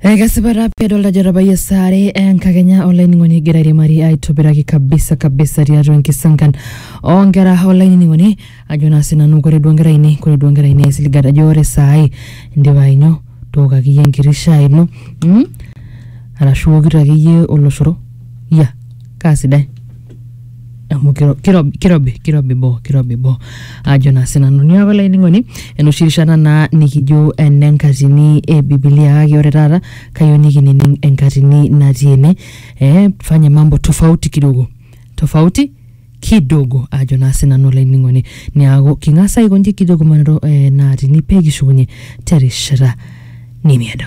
ekesipata pii adolta ajo etabayie saare enkakenya olainining'oni egira airiamari aitobiraki kabisa kabisa tiatua enkisankan onkera olainining'oni ajo naa sinanu kore duo nkera ainei kore duo nkera ainei aisiligat ajo ore saai indipa ainyo tooko akeyie enkiti shai ino mm? arashu iwokito akeyie oloshoro ya kaa sidai amu kiro- kirobi kirobi kirobi boo kirobi boo ajo naa sinanu niaku olainining'oni enoshi rishata naa nikijo ene nkatini e bibilia kake ore taata kayieu nikinining enkatini natii ene eh, fanye mambo tofauti kidogo tofauti kidogo ajo naa sinanu olainining'oni niaku king'as aikonji kijo kumanito eh, naatini pee kishukunye terishata nemiedo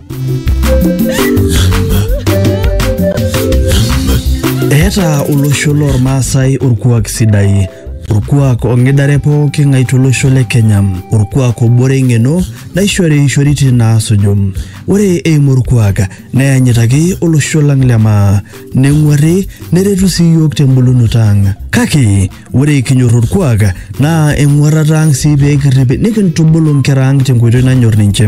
Eeta olosho loormaasai orkuak sidai orkuak ong'idare pooki ng'ae tolosho le Kenya orkuak obore eng'eno naishori ishoritin naasuju ore eimu orkuak neyanyitaki olosho lang le maa neng'uarri neretu sii iyiook tembulunoto ang kake Ore kinyor orkuak naa eng'uarrata ang sii pee kirrip nikintubulu nkera ang tenkoitoi nanyor ninche.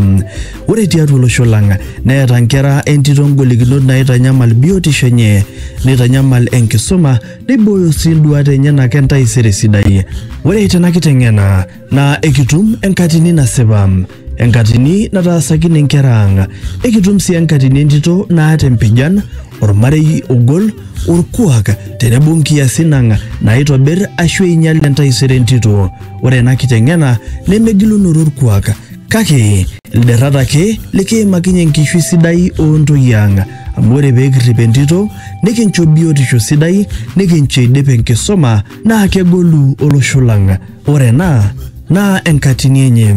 Ore tiatua olosho lang neeta nkera entito ngolikinot naitanyamal biotisho enye, neitanyamal enkisuma, neibooyo sii nduaat enyenak entaisere sidai. Ore tena kiteng'ena naa ekitum enkatini nasipa enkatini nataasakine inkera ang ekitum sii enkatini entito naata empijan ormarei ogol orkuak tenebo nkiasin ang naitobir ashu einyal entaisere entito ore ena kiteng'ena nemegilunoto orkuak kake ilderrat ake likiimakinye enkishui sidai oontoyie ang amu ore pee kirrip entito nikincho biotisho sidai nikincho eidip enkisuma naa kegolu olosho lang. Ore ena naa enkatini enye,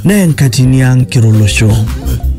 naa enkatini ang kira olosho.